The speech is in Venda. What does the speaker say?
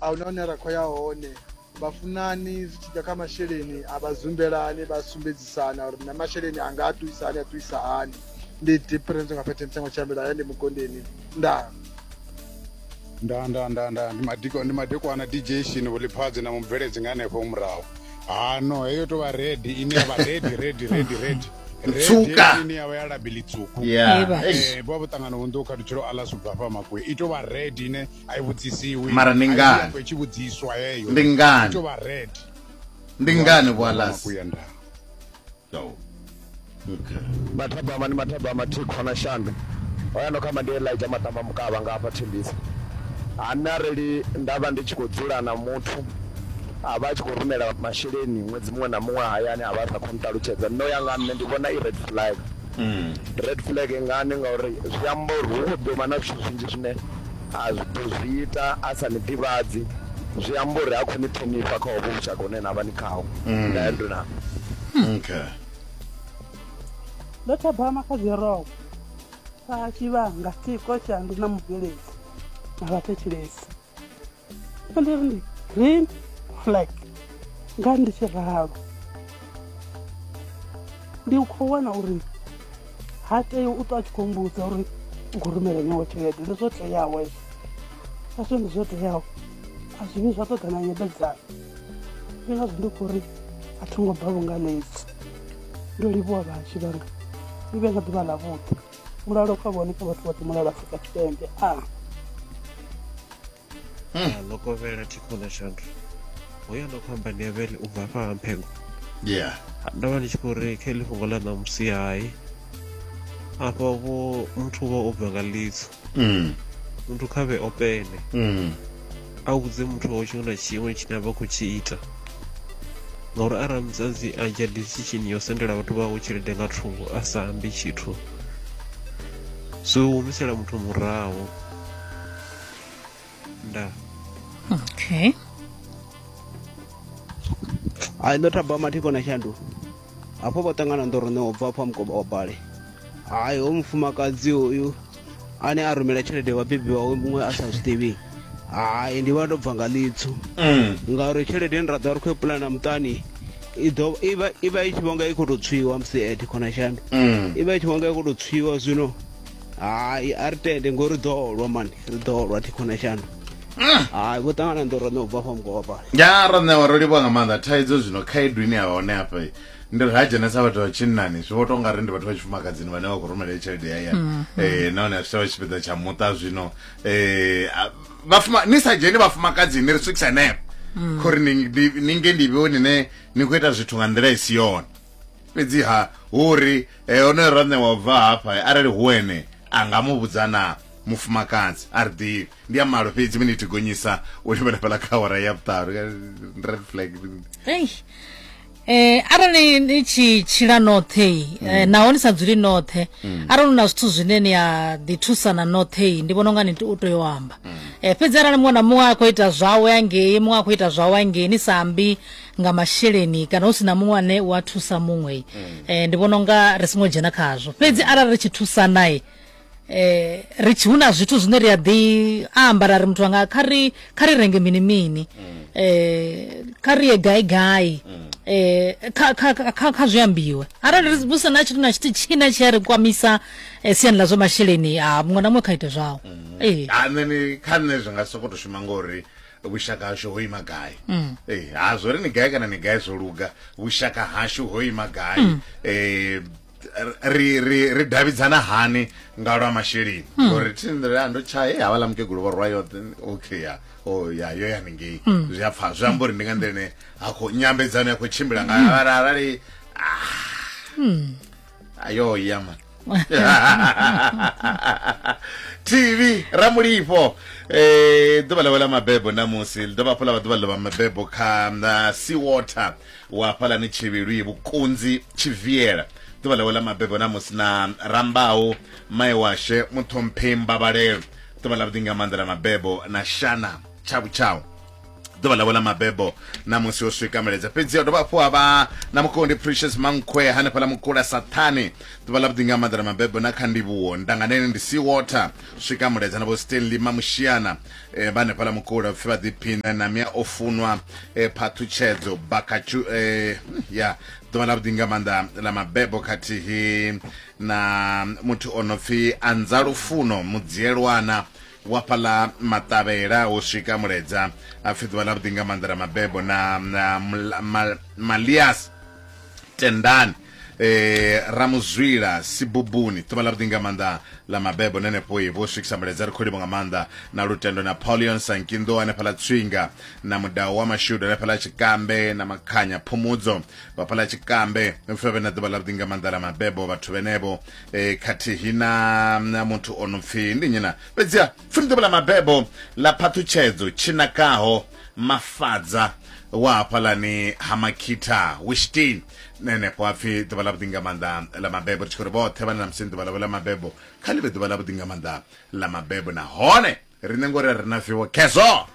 a huna hune ra khou ya hone vhafunani zwi tshi ḓa kha masheleni a vha zumbelani vha sumbedzisana uri na masheleni a nga a ṱuwisa hani a ṱuwisa hani ndi difference nga phethe mutsengo tshiambela haya ndi mukondeni ndaa nda nda nda nda ndi madiko ndi madekwana dj shini vhuliphadzi na mubveledzi nga hanefho murahu hano heyo tovha redi ine yavha redi redi redi redi Tsuka. ine yavha ya labili tsuku Yeah. Eba. Eish. Eh, bo vhuṱangano hunḓu kha dutshelo aḽa subva fha makwe i tovha redi ine mara ndi ngani ndi ngani ndi ngani vhualasi mathabama ni mathabama thikho na shandu oya no khamba ndi elija maṱamba mukavha nga hafha thembisa hani arali nda vha ndi tshi khou dzula na muthu a vha a tshi khou rumela masheleni ṅwedzi muṅwe na muṅwe hayani a vha a sa khou nṱalutshedza no ya nga nṋe ndi vhona i red flag Red flag ngani ngauri zwi amba uri hu khou ḓo vha na zwithu zwinzhi zwine a zwi ḓo zwi ita a sa ni ḓivhadzi zwi amba uri ha khou ni ṱhonifha kha hovho vhushaka hune na vha ni khaho nda ya nduna okay ndo thabama kha dziroko kha tshivhanga tshiko tshandu na mubveledzi na vhathetshelesi Vha ndi ri ndi green flag nga ndi tshi ralo ndi khou wana uri ha tei u ṱwa a tshi khou mbudza uri u khou rumela nyawo tshelede ndi zwo teaho hezwo a zwi ndi zwo teaho a zwi vhi zwa ṱoḓa na nyebedzano ndi ngazwo ndi khou ri a tho ngo bva vhungalezi ndo livhuwa vhashu vhanga ni vhe nga ḓuvha ḽa vhuḓi mulalo kha vhone kha vhathu vhoṱhe mulalo afrika tshipembe a hmm. ḽo kovhela thikhola shandu hoyo ndo khou amba ndi avele u bva fha ha mphengo yeah ndo vha ndi tshi khou ri kha iḽi fhungo ḽa ṋamusi hai afha vho muthu vha o bva nga litso mm. muthu kha vhe opene mm. a vhudze muthu wawe tshiṅwe na tshiṅwe tshine a vha khou tshi ita ngauri arali musadzi a dzhia decision yo sendela vhathu vhawe tshelede nga thungo a sa ambi tshithu so humisela muthu muraho nda okay ai no thabama thikona shanduka hafho vha ṱangana ndo rone o bva afha mukoba wa bale hayi ho mufumakadzi uyu ane a rumela tshelede vhabebi wawe muṅwe a sa zwiḓivhi hayi ndi vha ndo bva nga ḽitsu mm. ngauri tshelede ni ra ḓa ri khou pulana muṱani ivha i tshi vhonga i khou tou tswiwa musi ed khonashami mm. ivha i tshi vhonga i khou tou tswiwa zwino hai a ri tende ngori ri ḓo lwa mani ri ḓo lwa thi khona shano mm. hai vho ṱangana ndo roṋe u bva fha mugowa fhala ya roṋewa ro livha nga maanḓa thaidzo zwino khaedu ine ya hone hafha ndi ri ha dzhenesa vhathu vha tshinnani zwi vho to nga ri ndi vhathu vha tshifumakadzini vhane vha khou rumela tshelede ya ya mm. eh, nahone a zwi tshavha tshipiḓa tsha muṱa zwino eh, ni sa dzheni vhafumakadzini ri swikisa nepo mm. khori ninge ndi vhewo nine ni khou ita zwithu nga nḓila i si yone fhedziha hu ri e onoyo ranṋe wa bva hafha arali hu ene a nga mu vhudza na mufumakadzi a ri ḓivhi ndi a malo fhedzi minithi gonyisa u livhela fhala kha hora ya vhuṱaru red flag Eh arali ni tshi tshila noṱhe mm. eh, naho ni sa dzuli noṱhe mm. arali na zwithu zwine ni a ḓi thusana noṱhe ndi vhona unga ni u tea u amba mm. eh fhedzi arali muṅwe na muṅwe a khou ita zwawe angei muṅwe a khou ita zwawe angei ni sa ambi nga masheleni kana hu si na muṅwe ane u a thusa muṅwe eh, ndi vhona unga ri songo dzhena khazwo fhedzi arali ri tshi thusanae eh ri tshi hu na zwithu zwine ri a ḓi amba ra ri muthu anga kha ri kha ri renge mini mini eh kha ri ye gai gai eh kha kha kha- kha kha zwi ambiwe arali ri vhusa na tshithu na tshithu tshina tshi a ri kwamisa eh, siani ḽa zwa masheleni a muṅwe na muṅwe kha ite zwawo eh Ah, nṋe ni kha nṋe zwi nga soko to shuma ngori vhushaka hashu ho ima gai mm. eh, ha zwo ri ni gai kana ni gai zwo luga vhushaka hashu ho ima gai mm. eh, ri ri ri davhidzana hani nga lwa masheleni hmm. ngori thi nḓila ya ndo tsha e havhaḽa mukegulu vho rwa yoṱhe okay ya o oh, ya yo ya ningei hmm. zwi a pfha zwi amba uri ndi nga nḓila ine ha khou nyambedzano ya khou tshimbila nga hmm. arali ah. ayo yama tv ramulifho eh ḓuvha ḽawe ḽa mabebo namusi ḽi dovha hafhu ḽa vha ḓuvha ḽa mabebo kha na sea water wa fhalani tshivhilwi vhukunzi tshiviela ḓuvha ḽawe ḽa mabebo namusi na rambaho mai washe muṱhomphei mbabalelo ḓuvha ḽa vhuḓi nga maanḓa ḽa mabebo na shana tshavhu tshawu ḓuvha ḽavho ḽa mabebo na musi o swika meledza fhedzi ya dovha hafhu avha na mukondi precious mankhwe hanefha ḽa mukula sathane ḓuvha ḽa vhuḓi nga maḓana mabebo na kha ndivhuwo ndanganene ndi sea water swika muledza na vho stanley mamushiana e, eh, vha hanefha ḽa mukula pfhi vha ḓiphina na mia o funwa e, eh, phathutshedzo bakachu e, eh, ya ḓuvha ḽa vhuḓi nga maanḓa ḽa mabebo khathihi na muthu o no pfhi anza lufuno mudzielwana Wa fhaḽa maṱavhela u swika muledza, a pfi ḓuvha ḽavhuḓi nga maanḓa ḽa mabebo na Malias tendani e ra mu zwila sibubuni ḓuvha ḽavhuḓi nga maanḓa ḽa mabebo na henefho i vho swikisa muledza ri khou livho nga maanḓa na lutendo na Paulion Sankinḓo hanefhaḽa Tswinga na mudau wa mashudu hanefhaḽa Tshikambe na Makhanya Phumudzo vhafhaḽa Tshikambe pfevhe na ḓuvha ḽavhuḓi nga maanḓa ḽa mabebo vhathu vhenevho e, khathihi na na muthu o no pfi ndi nyina fhedziha pfuni ḓuvha ḽa mabebo ḽa phaṱhutshedzo tshinakaho mafadza wa hafhalani ha makhitha wishtin nenefho hapfi ḓuvha ḽa vhuḓi nga maanḓa ḽa mabebo ri tshi khou ri vhoṱhe vhane na musi ḓuvha ḽavho ḽa mabebo kha ḽi vhe ḓuvha ḽa vhuḓi nga maanḓa ḽa mabebo nahone riṋe ngori a ri na viwo khezwo